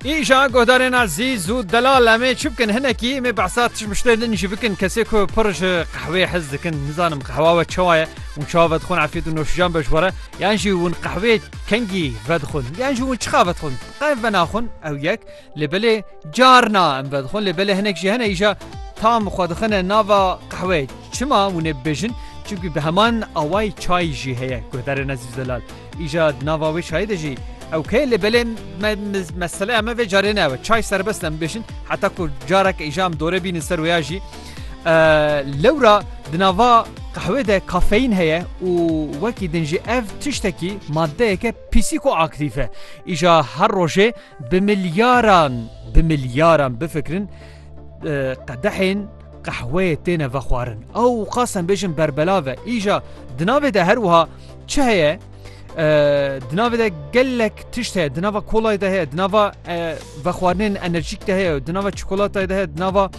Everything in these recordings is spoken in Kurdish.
Îja guhdarên Ezîz û Delal em ê çi bikin hinekî em ê behsa tişmiştê din jî bikin kesê ku pir ji qehwê hez dikin nizanim qehwa we çawa ye û çawa vedixwin efîd û noşijan be ji we re yan jî hûn qehwê kengî vedixwin yan jî hûn çixa vedixwin qev venaxwin ew yek lê belê carna em vedixwin lê belê hinek jî hene îja tam xwe dixine nava qehwê çima hûn ê bibêjin çimkî bi heman awayî çayî jî heye guhdarên Ezîz Delal Îja di nava wê çayê de jî ew keye lê belê me meseleya me vê carê ne ew e. Çay serbest em bibêjin heta ku careke îja em dore bînin ser wê ya jî lewra di nava qehwê de kafeyîn heye û wekî din jî ev tiştekî maddeyeke pîsîko aktîf e. Îja her rojê bi milyaran bi milyaran bifikirin qedehên Qehweyê têne vexwarin. Ew qas em bêjin berbelav e. Îja di navê de her wiha çi heye? Di navê de gelek tişt heye, di nava kolayê de heye, di nava vexwarinên enerjîk de heye, di nava çikolatayê de heye, di nava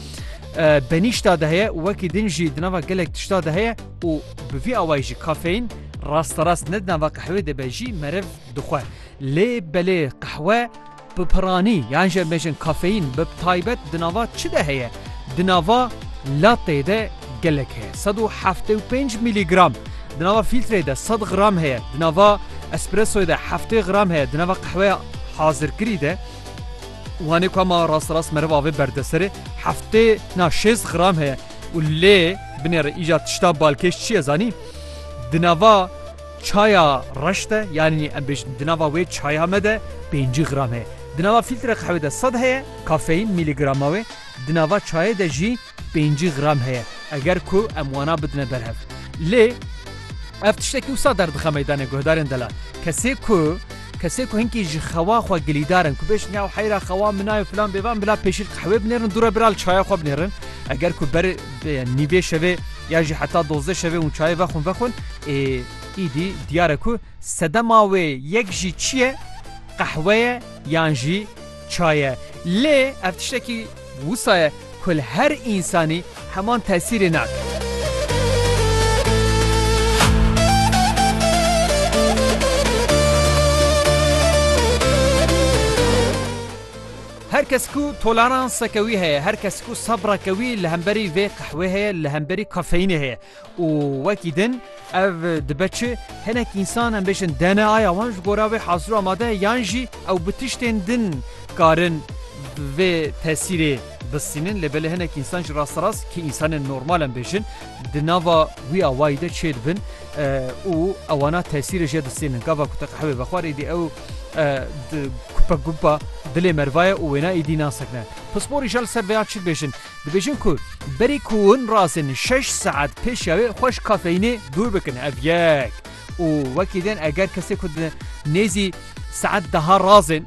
benîşta de heye û wekî din jî di nava gelek tişta de heye û bi vî awayî jî kafeîn rasterast ne di nava qehwê de be jî merev dixwe. Lê belê qehwe Bi piranî yan jî em bêjin kafeyîn bi taybet di nava çi de heye? Di nava latteyê de gelek heye. Sed û heftê û pênc mîlîgram. Di nava fîltreyê de sed gram heye. Di nava espressoyê de heftê gram heye. Di nava qehweya hazirkirî de wanê ku ma rast rast meriv avê berdesere heftê na şêst gram heye. Û lê binêre îcar tişta balkêş çi ye zanî? Di nava Çaya reş de yanî em bêjin di nava wê çaya me de pêncî gram heye. Di nava fîltre qehwê de sed heye, kafeîn, mîlîgrama wê, di nava çayê de jî pêncî gram heye, eger ku em wana bidine ber hev. Lê ev tiştekî wisa derdixwe meydanê guhdarên delal. Kesê ku. Kesê ku hinkî ji xewa xwe gilîdar in ku bêjin ya heyra xewa min a yo filan bêvan bila pêşîl qehwê binêrin dû re bira li çaya xwe binêrin. Eger ku ber nîvê şevê ya jî heta dozdeh şevê hûn çayê vexwin vexwin ê îdî diyar e ku sedema wê yek jî çi ye qehwe ye yan jî çay e. Lê ev tiştekî Wisa ye ku li her însanî heman tesîrê nake. Her kes ku toleranseke wî heye, her kes ku sebreke wî li hemberî vê qehwê heye, li hemberî kafeyînê heye. Û wekî din ev dibe çi? Hinek însan em bêjin DNAya wan ji gora wê hazir û amade ye yan jî ew bi tiştên din karin vê tesîrê bistînin lê belê hinek însan jî rasterast ki însanên normal em bêjin di nava wî awayî de çê dibin û ewana tesîrê jê distînin. Gava ku te qehwê vexwar êdî ew kupe gupa dilê merva ye û wêna êdî nasekine. Pisporî ja li ser vêya çi dibêjin? Dibêjin ku berî ku hûn rasên şeş saet pêşiya wê xwe ji kafeyînê dûr bikin ev yek û wekî din eger kesê ku di nêzî saet deha razên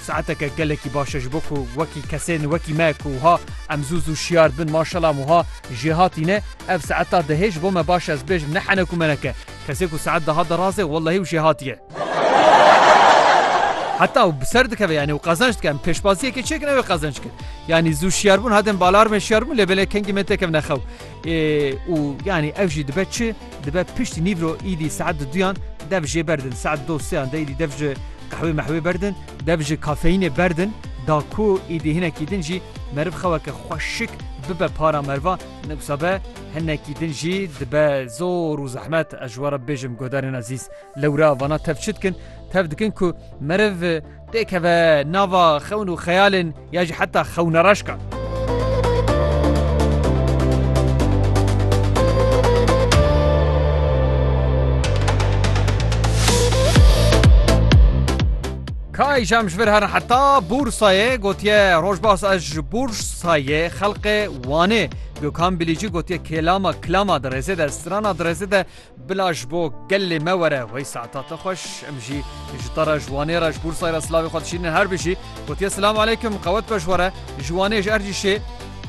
saeteke gelekî baş e ji bo ku wekî kesên wekî me ku wiha em zû zû şiyar dibin maşela em wiha jê hatîne ev saeta dehê ji bo me baş e ez bêjim ne henek û menek e kesê ku saet deha de razê wellehî û jê hatiye. Heta ew bi ser dikeve yanî û qezenç dike em pêşbaziyekê çêkin ew ê qezenç kir. Yanî zû şiyarbûn hadem balarmê şiyarbûn lê belê kengî me têkevne xew. û yanî ev jî dibe çi dibe piştî nîvro îdî saet di duyan dev jê berdin saet do seyan de îdî dev ji qehwê mehwê berdin dev ji kafeyînê berdin da ku îdî hinekî din jî meriv xeweke xweşik bibe para merva newsa be hinekî din jî dibe zor û zehmet ez ji we re bêjim guhdarên ezîz. Lewra vana tev çi dikin? Tev dikin ku meriv tê keve nava xewn û xeyalên ya jî heta xewnareşkan. Kay jam ji vir herin heta Bûrsayê gotiye rojbas ez ji Bûrsayê xelqê Wanê Gökhan Bilîcî gotiye kêlama kilama di rêzê de strana di rêzê de Bila ji bo gelê me were wey saeta te xweş em jî ji te re ji Wanê re ji Bursayê re silavê xwe dişînin her bijî gotiye silam aleykum qewet be ji we re ji Wanê ji Ercîşê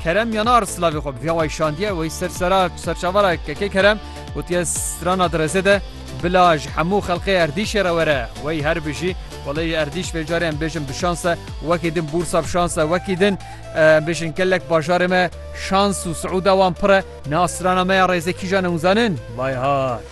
Kerem Yanar silavê xwe bi vîya wey şandiye wey ser sera tu serçava re kekê Kerem gotiye strana direzê de bila ji hemû xelqê Erdîşê re were wey her bijî welê Erdîş vê carê em bêjin bi şans e wekî din Bursa bi şans e wekî din em bêjin gelek bajarê me şans û siûda wan pir e. Nasrana me ya rêzekîjan û zanin, Vayhat!